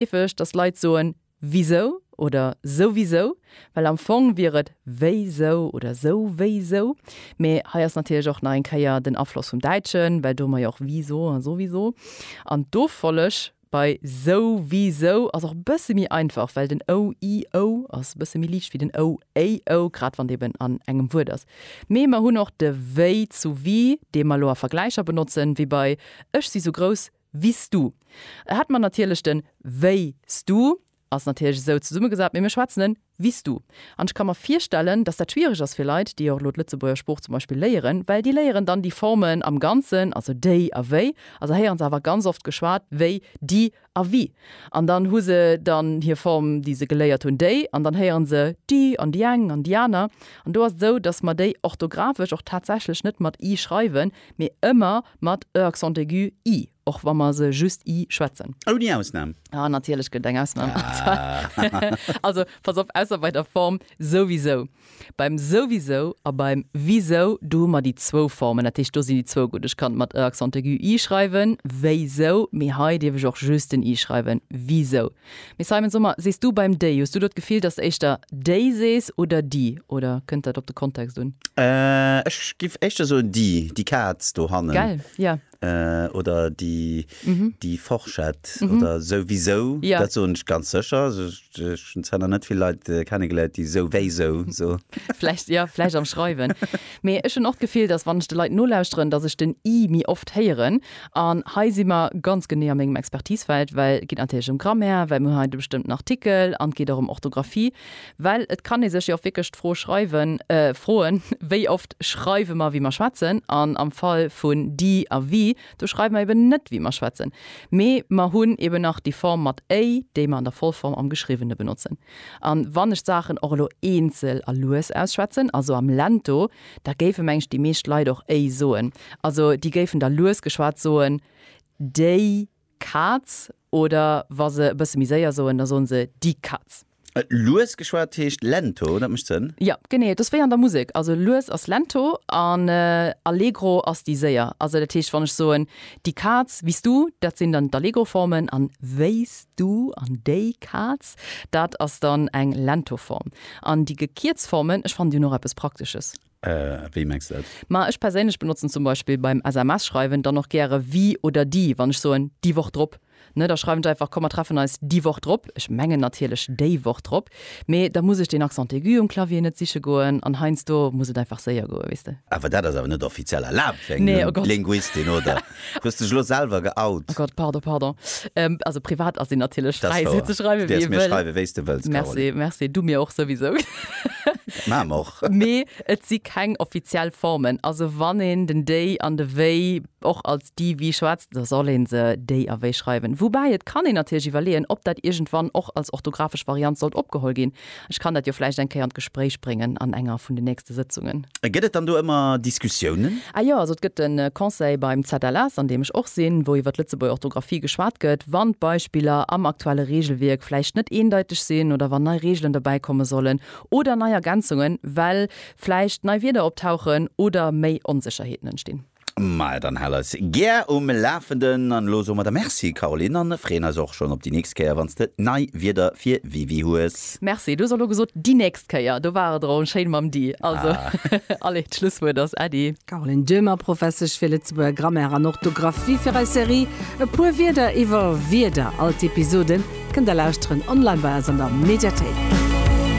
heefeg, dass Leit soen wisou oder souwisou, well am Fong wier et wéisou oder souwéisou. Mee hei ass natierlech och nach eng Kéier den Afloss vum Däitschen, well do mer jo och wisou a souwisou. An d'Offolleg bei souwisou ass och e bësse méi einfach, well den ou, i, ou ass e bësse méi liicht wéi den ou, éi, ou, grad wann d'eeben an engem Wuert ass. Mee mer hunn och de wéi zu wie, dee mer elo a Vergläicher benotzen, wéi bei Ech si sou grouss Wiss du. E hätt mer natierlech den Wéi s du ass natierlech esou zesummegesat, mee mir schwätzen en Wiss du. An ech ka mer virstellen, datt dat schwiereg ass fir Leit, déi och elo d'Lëtzebuerger Sprooch zum Beispill léieren, well déi léieren dann déi Formen am Ganzen, also déi a wéi, a se héieren se awer ganz oft geschwat wéi di a wi. An dann hu se dann hir Form, déi se geléiert hunn, déi, an dann héieren se di an di eng an di aner. An do ass et esou, datt mer déi orthografesch och tatsächlech net mat i schreiwen, mee ëmmer Mat e accent aigu, i, och wa mer se just i schwätzen. Ouni Ausnam. Ah, natierlech gëtt et eng Ausnam. Also, pass op, ausser bei der Form souwisou. Beim souwisou a beim wisou, do hu mer déi zwou Formen. Dat heescht, do sinn déi zwou gutt. Ech kann et mat e accent aigu, i schreiwen, wéisou, mee hei dierf ech och just den i schreiwen, wisou. Mee Simon, so mer, sees du beim déi, hues du do d'Gefill, datt s de éischter déi sees oder déi, oder kënnt dat op de Kontext un? Ech géif éischter soen déi, déi Kaz do hannen. Gell, jo. Oder déi, déi Forschett oder souwisou, dat soen ech ganz sécher. Also ech hunn zwar nach net vill Leit kennegeléiert, déi souwisou so. Vläicht, jo, vläicht am Schreiwen. Mee ech hunn och d'Gefill, datt wann ech de Leit nolauscheren, datt ech den i méi oft héieren. An hei si mer ganz genee a mengem Expertisefeld, well et geet natierlech ëm Grammaire, well mir hunn hei de bestëmmten Artikel an et geet och ëm Orthografie, well et kann ee sech jo och wierklech d'Fro schreiwen, froen, wéi oft schreiwe mer, wéi mer schwätzen? An am Fall vun di a wi, do schreiwe mer eben net, wéi mer schwätzen, mee mer hunn eben nach déi Form mat éi, déi mer an der Vollform am Geschriwwene benotzen. A wann ech d'Saachen och elo eenzel a lues ausschwätzen, also am Lento, da géife meng ech déi meescht Leit och éi soen. Also déi géifen da lues geschwat soen déi Kaz oder wa se e bësse méi séier soen, da soen se di Katz. Lues geschwat heescht lento, dat mécht Sënn? Jo, genee, et ass wéi an der Musek. Also lues ass lento an allegro ass déi séier. Also dat heescht, wann ech soen di Kaz, wéi s du, dat sinn dann d'Allegro-Formen an wéi s du an déi Kaz, dat ass dann eng lento Form. An déi gekierzt Formen, ech fannen déi hunn och eppes Praktesches. Wéi mengs du dat? Ma ech perséinlech benotzen zum Beispill beim SMS schreiwen dann och gäre wie oder déi, wann ech soen déi Woch drop, ne, da schreiwen ech einfach komm mer treffen eis déi Woch drop, ech mengen natierlech déi Woch drop, mee da muss ech deen Accent aigu um Clavier net siche goen an heiansdo muss et einfach séier goen, weess de. Awer dat ass awer net offiziell erlaabt fir eng Linguistin, oder? Du hues dech elo selwer geout. Oh Gott, pardon, pardon. Ähm, also privat ass een natierlech Das fräi, war. sou ze schreiwen, Du wéi däers ee mir wëll. schreiwen, wéi s de wëlls, Merci, Caroline. merci. Du mir och souwisou. Maach mer och. Mee et si keng offiziell Formen. Also wann een den déi an de wéi och als di, wi schwätzt, da soll ee se déi a wéi schreiwen. Woubäi et kann een natierlech iwwerleeën, ob dat iergendwann och als orthografesch Variant sollt opgeholl ginn. Ech kann dat jo vläicht eng Kéier an d'Gespréich bréngen an enger vun den nächste Sëtzungen. A gëtt et dann do ëmmer Diskussiounen? Ah jo, also et gëtt e Conseil beim ZLS, an deem ech och sinn, wou iwwer d'Lëtzebuerger Orthografie geschwat gëtt, wann d'Beispiller am aktuelle Reegelwierk vläicht net eendeiteg sinn oder wann nei Reegelen dobäi komme sollen oder nei Ergänzungen, well vläicht nei Wierder optauchen oder méi Onsécherheeten entstinn. Maja, dann hal eis gär um Lafenden an elo soe mer der Merci Caroline an freeën eis och schonn op déi nächst Kéier wann s de nei Wierder fir WiWi hues. Merci, du hues elo gesot déi nächst Kéier, do war et erëm schéin mam di. Also allez, d'Schlusswuert ass Äddi. Caroline Döhmer, Professesch fir Lëtzebuerger Grammaire an Orthografie fir eis Serie E puer Wierder iwwer Wierder. All d'Episoden kënnt der lauschteren online bei eis an der Mediathéik.